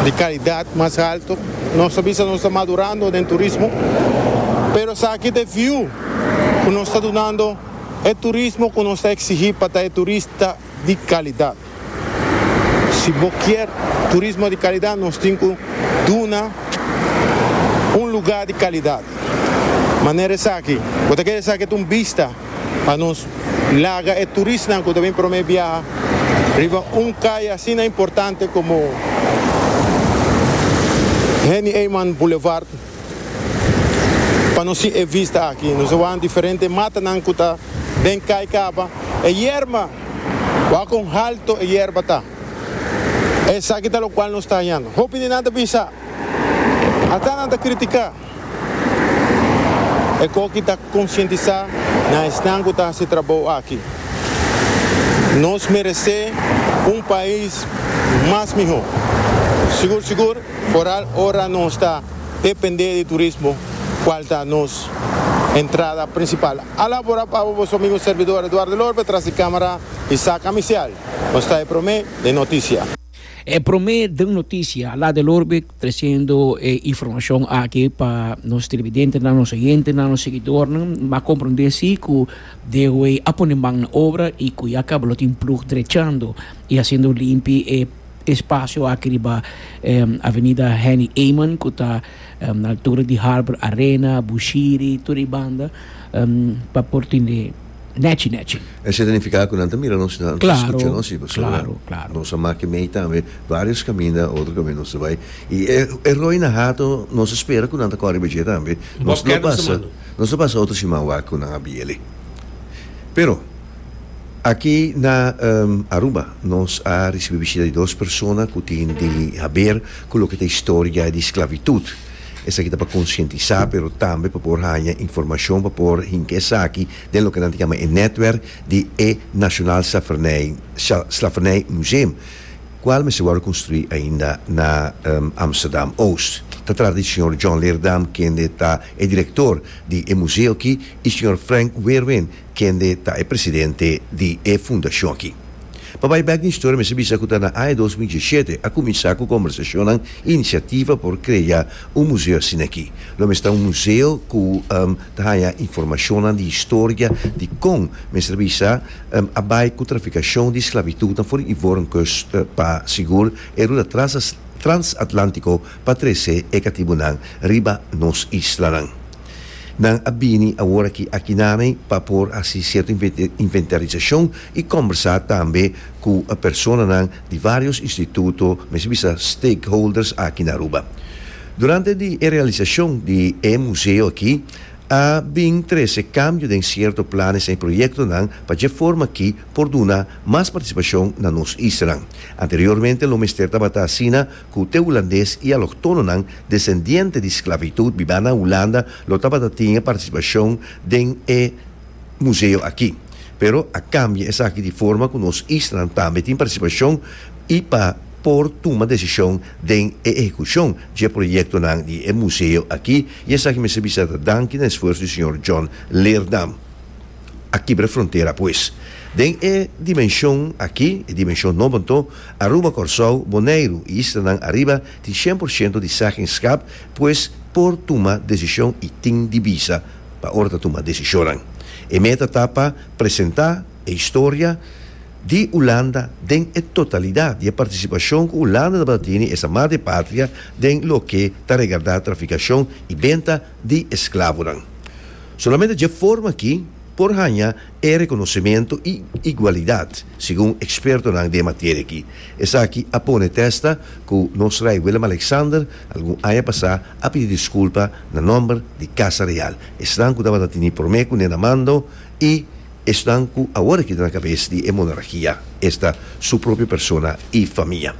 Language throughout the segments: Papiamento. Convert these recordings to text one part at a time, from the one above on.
di kalidat mas haltu. Nos ta bisa nos ta madurando den turismo, pero esaki ta e fiu ku nos ta dunando e turismo ku nos ta eksigí pa ta e turista di kalidat. Si bo kier turismo di kalidat nos tin ku duna un lugá di kalidat. Manera esaki, bo ta kere esaki ta un bista. Pa nos laga e turistnan ku ta bin promé biaha riba un kai asina importante komo Henny Eyman Boulevard pa nos sin e vista aki. Nos a wak diferente matanan ku ta den kai kaba. E yerba, wak kon halto e yerba ta. Esaki ta lokual nos ta hañando. Hopi di nan ta bisa, Aká nan ta kritiká. e koki ta konsientisá na esnan ku ta hasi trabou aki. Nos meresé un pais mas mihó, sigur sigur foral ora nos ta dependé di turismo kual ta nos entrada prinsipal. Ala por a pabo boso amigo servidor Eduardo Lorpe tras di kámara Isaac Amisial nos trae promé den notisia. E promé den notisia la del orbe tresiendo e informacion aki pa nos televidentenan, nos oyentenan, nos seguidornan m'a comprende si cu Dewe a pone man na obra y cu ya caba lo tin plug drechando y haciendo limpi e espacio aki riba Avenida Henny Eman cu ta na altura di Harbour Arena, Bushiri, tur e banda pa por tin e Nechi, nechi. Esei ta nifiká ku nan ta mira nos, nan ta skucha nos i pasobra nos a make mei tambe vários kaminda, otro kaminda nos ta bai i e roi na hato nos a spera ku nan ta kòre bidjé tambe. Nos lo pasa, nos lo pasa otro siman wak ku nan a biele. Pero, aki na Aruba nos a risibi bishita di dos persona ku tin di haber ku loke ta historia di sklavitut. Esaki ta pa konsientisá pero tambe pa por haña informashon pa por hinka esaki den loke nan ta yama e nètwerk di e National Slavernij Slavernij Museum, kual mester wòrdu konstruí ainda na Amsterdam Oost. Ta trata di señor John Leerdam kende ta e direktor di e museo aki i señor Frank Weerwin Kende ta e presidente di e fundashon aki? Pa bai bek den historia mester bisa ku ta na aña dos mil diesshete a kuminsá ku kòmbersashonnan i inisiativa por krea un museo asina aki. Lo mester ta un museo ku ta haña informashonnan di historia di kon, mester bisa, a bai ku trafikashon di sklavitutnan for di Ivorenkust pa sigur e ruta transatlantiko pa trese e katibunan riba nos islanan. Nan a bini aworaki akinami pa por hasi cierto inventarizacion y combersa tambe cu personanan di varios instituto, mester bisa stakeholders aki na Aruba. Durante di e realizacion di e museo aki a bin trece cambio den cierto planes y proyectonan pa dje forma ki por duna mas participacion na nos isla. Anteriormente lo mester tabata asina ku te hulandes i aloktononan desendiente di sklavitud bibá na Hulanda lo tabata tin e partisipashon den e museo aki. Pero a kambia esaki di forma ku nos islanan tambe tin partisipashon i pa por tuma desishon den e ehekushon dje proyektonan di e museo aki i esaki mester bisa ta danki na esfuerso di señor John Leerdam. A kibra frontera pues. Den e dimenshon aki, e dimenshon nobo anto, Aruba, Kòrsou, Boneiru i islanan ariba tin shen por shento di sègenskap, pues por tuma desishon i tin di bisa pa ora ta tuma desishonnan. E meta ta pa presentá e historia di Ulanda den e totalidat di e partisipashon ku Ulanda tabata tene esa madre patria den loke ta regardá trafikashon i benta di esklavonan. Solamente dje forma akí por haña e rekonosementu i igualidat, segun ekspertonan den e materia aki. Esaki a pone testa ku nos rei Willem-Alexander algun aña pasá a pidi diskulpa na nòmber di Kasa Real, esnan ku tabata tini promé kuné na mando i esnan ku awor a keda na kabes di e monarkia, esta su propio persona i famia.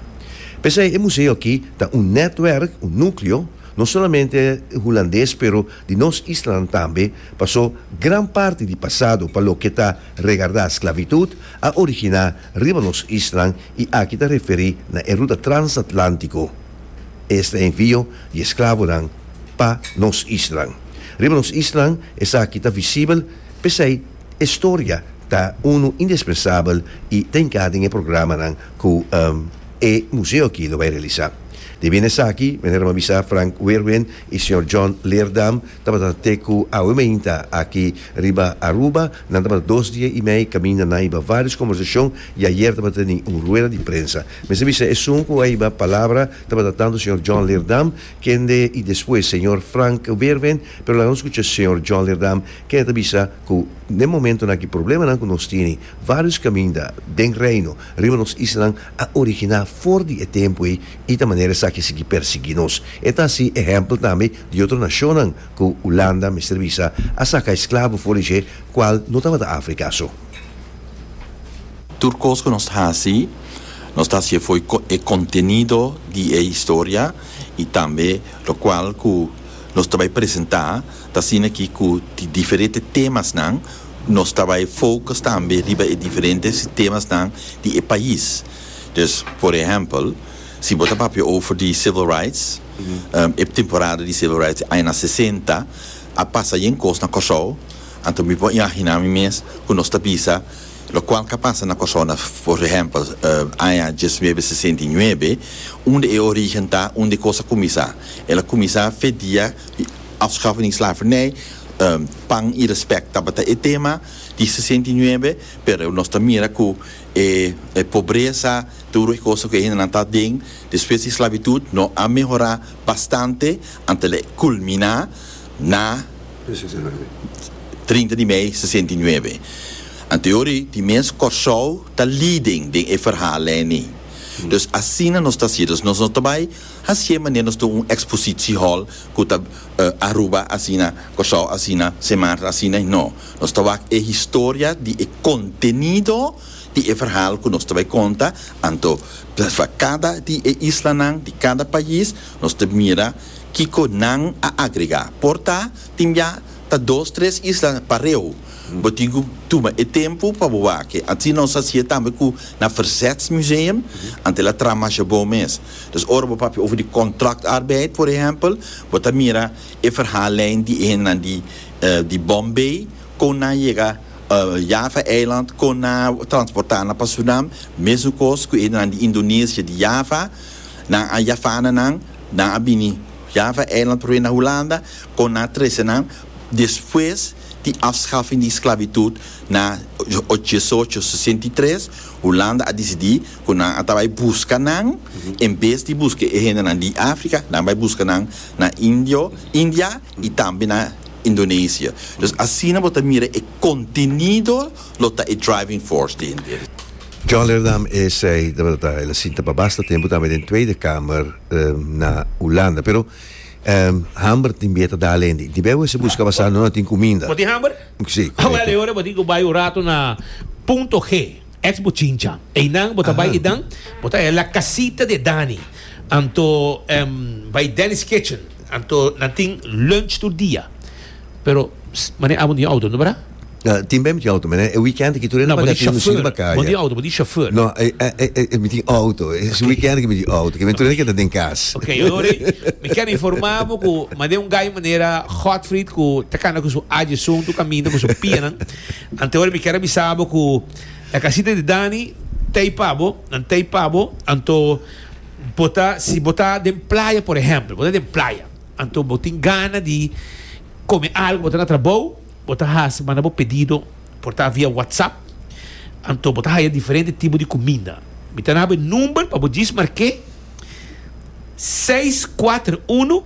P'esei e museo aki ta un nètwèrk, un núkleo, no solamente hulandes pero di nos islanan tambe, paso gran parti di pasado pa loke ta regardá sklavitud a originá riba nos islanan i aki ta referí na e ruta transatlántico. Esta envio di esklavonan pa nos islanan. Riba nos islanan esaki ta visibel, p'esei e storia ta unu indispensabel i ta inká den e programanan ku e museo aki lo bai realisá. Te bini esaki, manera mi a bisa Frank Weerwind E señor John Leerdam tabata na Teku awe mainta aki riba Aruba. Nan tabata dos dia i mei kaminda na aiba varios kombersashon i ayer tabata teni un rueda di prensa. Mester bisa esun ku aiba palabra tabata tantu señor John Leerdam kende i despues señor Frank Weerwin, pero laga nos skucha señor John Leerdam kende ta bisa ku den momentonan aki problemanan ku nos tini varios kaminda den Reino riba nos islanan a originá for di e tempu ei i ta manera esaki sigui persiguí nos. E ta hasi ehèmpel tambe di otro nashonnan, ku Ulanda mester bisa a saka e sklavo for di dje kual no tabata Afrika so. Tur kos ku nos ta hasi, nos ta hasi afoi e kontenido di e historia i tambe lokual ku nos ta bai presentá ta asina ki ku di diferente temasnan, Nos ta bai focus tambe riba e diferente sistemasnan di e pais. Dus, por ehempel, si bo ta papia over di civil rights, e temporada di civil rights di añana sesenta a pasa yen cos na Corsou, anto mi por imagina mi mes cu nos ta bisa locual ca pasa na Corsou na, por ehempel, aña diesnuebe sesenta i nuebe, unda e origen ta, unda e cos a cuminsa. El a cuminsa fe dia di afschaffing di slavernij. Pan i respect tabata e tema di sesenta i nuebe pero nos ta mira cu e pobreza tur e cosa cu e hendenan ta aden despues di esclavitud no a mehora bastante anto lo culmina na trinta di mei sesenta i nuebe. Anto yori di mes Corsou ta leading den e verhal eni. Dus asina nos ta haci, nos no ta bay haci manera nos tin un expositiehall cu ta Aruba asina, Kòrsou asina, Semantra asina i no. Nos ta wak e historia di e kontenido di e verhal ku nos ta bai konta, anto pa kada di e islanan, di kada pais, nos ta mira kiko nan a agregá. Por ta tin bia ta dos, tres isla pareu. Bo tin ku tuma e tempu pa bo wak e. Asina nos hasié tambe ku na Verzetsmuseum, anto el a traha masha bon mes. Dus ora bo papia over di contractarbeid, por ehempel, bo ta mira e verhaallijn di e hendenan di di Bombay, kon nan a yega Java Eiland, kon nan a transporta nan pa Surinam, mesun kos ku e hendenan di Indonesia di Java, nan a yafana nan, nan a bini Java Eiland promé na Hulanda, kon nan a trese nan despues di afschaffing di esclavitud na ocho desocho sesenta i tres, Hulanda a disidí. ku nan a ta bai buska nan, en bes di buska e hendenan di Afrika, nan bai buska nan na Indio, India i tambe na Indonesia. Dus asina bo ta mira e kontenido lo ta e driving force di hende. John Leerdam esei tabata ta el a sinta pa basta tempu tambe den Tweede Kamer na Hulanda, pero hamber tin bier ta da alende. Di beu ese buska basá no a tin kuminda. Bo tin hamber? Sí, korekto. Bel e ora bo tin ku bai un ratu na Punto G. Ex bo chincha einan bo ta bai einan bo ta e la casita de Dani anto em bai Dani's kitchen anto nan tin lunch tur dia pero mane abo no tin auto no bra? No tin bai mi tin auto mane e weekend aki tur e na baga tin mi shini bakaya. Bo tin auto bo tin chauffeur. No e e mi tin auto es weekend aki mi tin auto ke mi tur e na keda den cas. Ok ory mi ken informa bo ku mane un guy manera Godfrid ku ta kanda ku su ajeson tur caminda ku su pianan. Antehoran mi kier a bisa bo ku e kasita di Dani t'ei pa bo, nan t'ei pa bo, anto bo ta si bo ta den playa por ehèmpel, bo ta den playa anto bo tin gana di kome algu bo ta na trabou bo ta hasi manda bo pedido por ta via whatsapp anto bo ta haya diferente tipo di kuminda mi ta na bo e number pa bo djis mark'é seis kuater unu